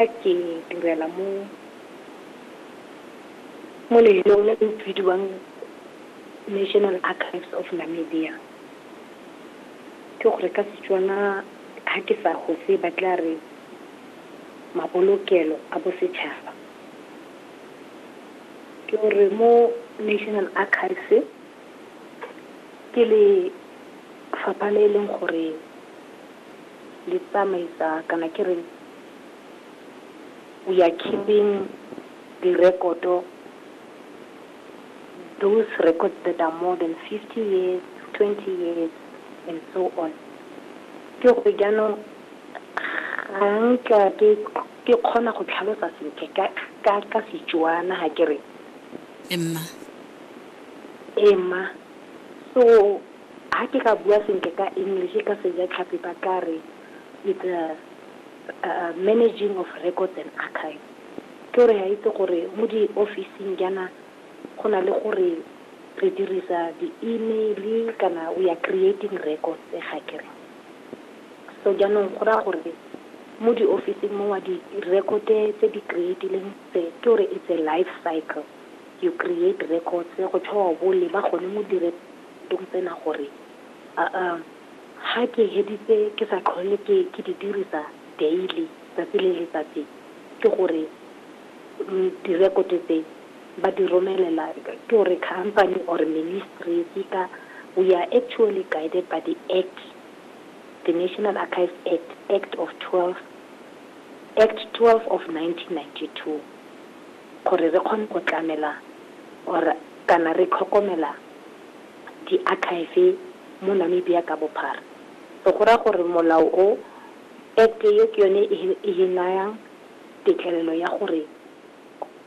Ke direla mo lefelong le le bidiwang National Archives of Namibia. Ke gore ka Setswana ha ke sa gose ba tla re mabolokelo a bosetšhaba. Ke gore mo National Archives ke lefapha le e leng gore le tsamaisa kana ke re. we are keeping di rekoto, those records that are more than fifty years, twenty years and so on. Ke gore jaanong ga nka ke ke kgona go tlhalosa sentle ka ka ka Setswana ga ke re Emma. ema. So ha ke ka bua sentle ka English ka Sejatlhapi ba ka re It's a managing of records and archives. Ke gore ha itse gore mo di office-ing jaana go na le gore re dirisa di-email kana we are creating records ga kere. So jaanong go raya gore mo di office-ing mo wa di record tse di creatileng tse ke gore it's a life cycle. You create records go tšhwa wa bo leba gone mo direkotong tsena gore Ga ke heditse ke sa tlhole ke ke di dirisa daily tsatsi le letsatsi ke gore direkoto tse ba di romelela ke gore company or ministry seka we are actually guided by the act the National Archives Act, Act of 12, Act 12 of 1992 gore re kgone go tlamela or kana re tlhokomela diakhaefe mo Namibia ka bophara. Re go raya gore molao o, Act e, ke yone e e nayang tetlelelo ya gore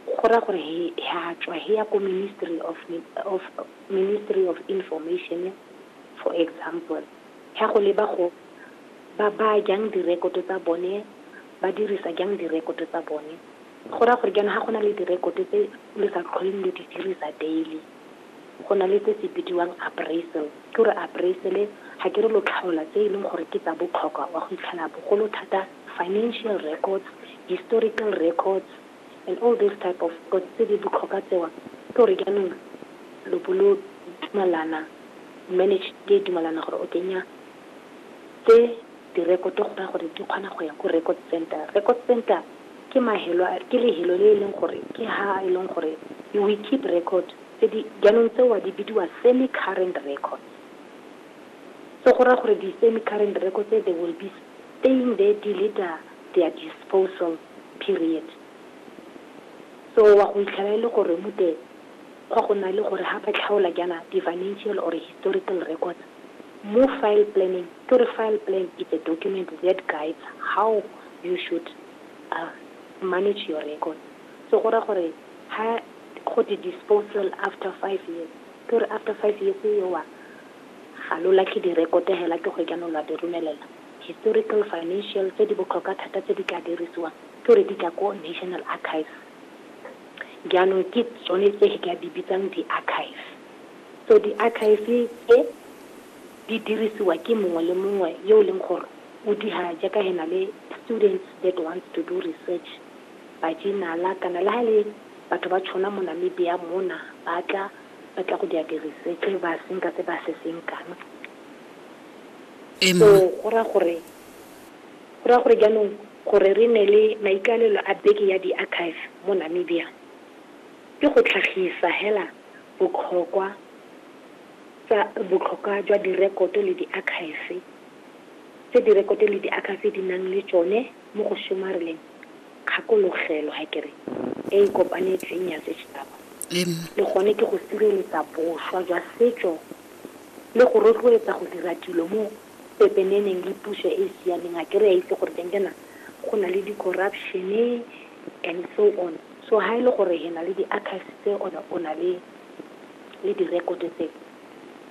go raya gore he ya tswa he ya ko Ministry of of Ministry of Information for example, he ya go leba go ba baya jang direkoto tsa bone, ba dirisa jang direkoto tsa bone. Go raya gore jaanong ha go na le direkoto tse lo sa tlholeng lo di dirisa daily. go na le se se bidiwang appraisal. Ke gore appraisal-e ga ke re lo tlhaola tse e leng gore ke tsa botlhokwa wa go itlhela bogolo thata financial records, historical records and all these type of records tse di botlhokwa tsewa. Ke gore jaanong lo bo lo dumalana, management e dumalana gore o kenya tse Direkoto go raya gore di kgona go ya ko record centre. Record centre ke mahelo, ke lehelo le e leng gore ke ha e leng gore you will keep record tse di, jaanong tseo di bidiwa semi current records. So go raya gore di semi current records tse they will be staying there till it a their disposal period. So wa go itlhela e le gore mute, Fa go na le gore ga ba tlhaola jaana di-financial or historical records mo file planeng, ke gore file plan is a document that guides how you should manage your records. So go raya gore ha go te disposal after five years, ke gore after five years eo ga lo latlhe di-record hela ke gore jaanong lo a di romelela historical, financial tse di botlhokwa thata tse di tla dirisiwang ke gore di tla ko National Archives. Jaanong ke tsone tse ke ka di bitsang di-archive. So di-archive tse di dirisiwa ke mongwe le mongwe yo e leng gore o dira jaaka he na le students that wants to do research, ba journal-a kana le ha e le batho ba tšhona mo Namibia mona ba tla ba tla go dira di-research ba senka se ba se senkang. So go raya gore Go raya gore jaanong gore re nne le maikaelelo a Beke ya Diakhaefe mo Namibia ke go tlhagisa hela botlhokwa tsa botlhokwa jwa direkoto le diakhaefe, tse direkoto le diakhaefe di nang le tsone mo go somareleng kgakologelo ha ke re e e kopanetsweng ya setšhaba, le gone ke go sireletsa boswa jwa setso le go rotloetsa go dira dilo mo pepeneneng le puso e e siameng ga ke re a itse gore teng ke na go na le di corruption and so on so ha e le gore he na le di archives tse ona o na le le di record tse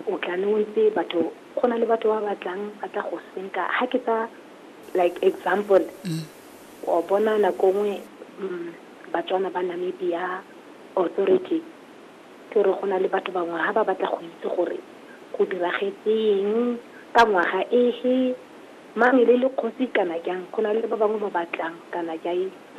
o tla ne o ntse batho go na le batho ba batlang ba tla go senka ha ke tsa like example mm. o bona nako nngwe mm, batswana ba namibia authority Ke re go na le batho bangwe ha ba batla go itse gore go diragetseng, ka ngwaga efe, mang e ne e le kgosi kana jang, go na le ba bangwe ba batlang kana jang.